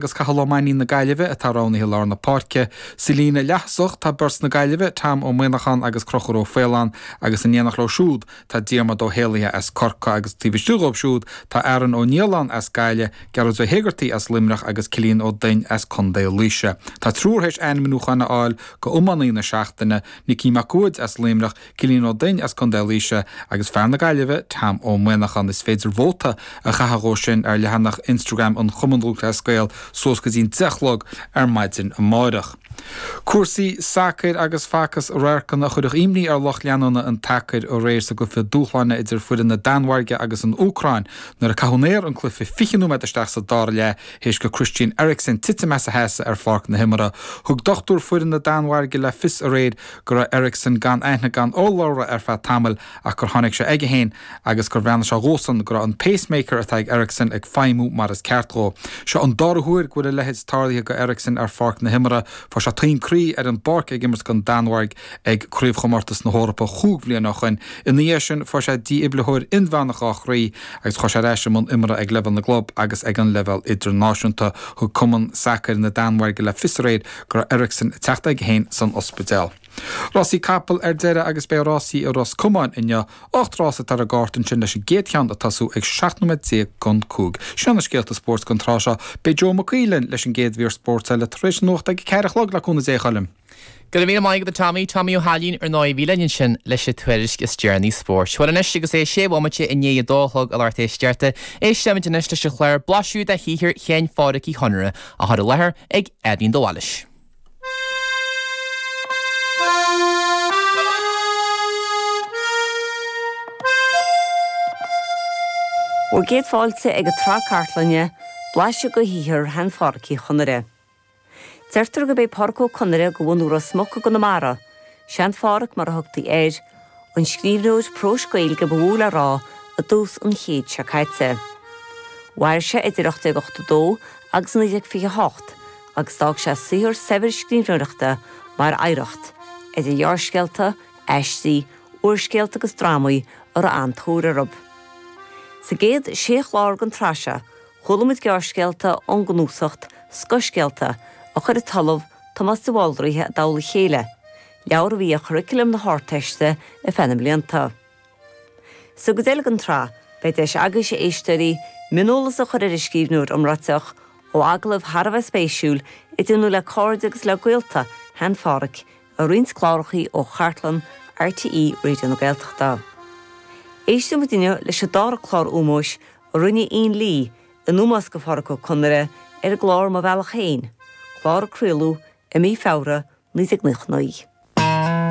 agus Cathal Ó Mainnín na Gaillimhe atá roghnaithe i lár na páirce. Sa líne leaththosach tá beirt na Gaillimhe, Tom Ó Manacháin agus Crochúr Ó Faoláin agus in éineacht leo siúd tá Diarmaid Ó hÉalaithe as Corcaigh agus taobh istigh dhóibh siúd tá Aaron Ó Nialláin as Gaillimh, Gearóid Ó hÉigeartaigh as Luimneach agus Cillian Ó Duinn as Contae Laoise. Tá triúr théis ainmniúcháin a fháil go iománaí na seachtaine, Nicky Mac Uaid as Luimneach, Cillian Ó Duinn as Contae Laoise agus fear na Gaillimhe, Tom Ó Manacháin. Is féidir vóta a chaitheamh dhóibh sin ar leathanach Instagram an Chumainn Lúthchleas Gael suas go dtí'n deich a chlog ar maidin amáireach. Cúrsaí sacair agus facas radharcanna a chuirfeadh imní ar lucht leanúna an tsacair aréir sa gcluiche dúshláin idir foireann na Danmhairge agus an Úcráin nuair a caitheadh in aer an cluiche fiche nóiméad isteach sa dara leath théis go Christian Eriksen titim as a sheasamh ar pháirc na himeartha. Thug dochtúir foireann na Danmhairge le fios aréir go raibh Eriksen gan aithne gan urlabhra ar feadh tamaill ach gur tháinig sé aige féin agus gur bhreathnaigh sé dhósan go raibh an 'pacemaker' atá ag Eriksen ag feidhmiú mar is ceart dhó. Seo an dara huair go bhfuil a leithéid tarlaithe go Eriksen ar pháirc na himeartha. Fuair sé taom croí ar an bpáirc ag imirt don Danmhairg ag Craobhchomórtas na hEorpa chúig bhliana ó shoin. Ina dhiaidh sin fuair sé dífhiblitheoir inmheánach dhá chroí agus chuaigh sé ar ais i mbun imeartha ag leibhéal na gclub agus ag an leibhéal idirnáisiúnta. Thug Cumann Sacair na Danmhairge le fios aréir go raibh Eriksen ag teacht aige féin san ospidéal. Rásaí capall ar deireadh agus beidh rásaí i Ros Comáin inniu, ocht rása atá ar an gcárta ansin leis an gcéad cheann ag tosú ag 17 nóiméad don cúig. Seo na scéalta spóirt don tráth seo. Beidh Joe Mac Aoidh linn leis an gcéad mhír spóirt eile tar éis na nuachta ag a ceathair a chlog le cúnamh Dé, a Choilm. Go raibh míle maith agat a Tommy, Tommy Ó hAilín ar ndóigh a bhí linn ansin leis an tuairisc is deireanaí spóirt. Bhuel anois agus é sé bhomaite i ndiaidh a dó a chlog a lucht éisteachta, éistfimid anois leis an chlár, blaiseadh de shaothar Shean Phádraic Uí Chonaire, á chur i láthair ag Eibhlín de Bhailís. Bhur gcéad fáilte ag an tsraith cartlainne, Blaiseadh de shaothar Shean Phádraic Uí Chonaire. Deirtear gurb é Pádraic Ó Conaire de bhunadh Ros Muc i gConamara, Sean Phádraic mar a thugtaí air, an scríbhneoir próis Gaeilge ba mhó le rá i dtús an chéid seo caite. Mhair sé idir 1882 agus 1928 agus d'fhág sé saothar saibhir scríbhneoireachta mar oidhreacht, idir ghearrscéalta, aistí, úrscéalta agus drámaí a raibh an-tóir orthu. Sa gcéad sé chlár den tsraith seo, chuala muid gearrscéalta ón gcnuasacht Scothscéalta a chuir an tOllamh Tomás de Bhaldraithe i dtoll a chéile, leabhar a bhí ar churriculum na hArdteiste ar feadh na mblianta. Sa gcuid eile den tsraith, beidh deis agaibh, a éisteoirí, mioneolas a chur ar an scríbhneoir iomráiteach, ó agallamh thar a bheith spéisiúil a déanadh le cairde agus le gaolta Shean Pháraic ar roinnt clárachaí ó chartlann RTÉ Raidió na Gaeltachta. Éistfidh muid inniu leis an dára clár ómóis a rinne Ian Lee In ómós do Phádraic Ó Conaire ar an gclár Mo Bhealach Féin, clár a craoladh i mí Feabhra 1999.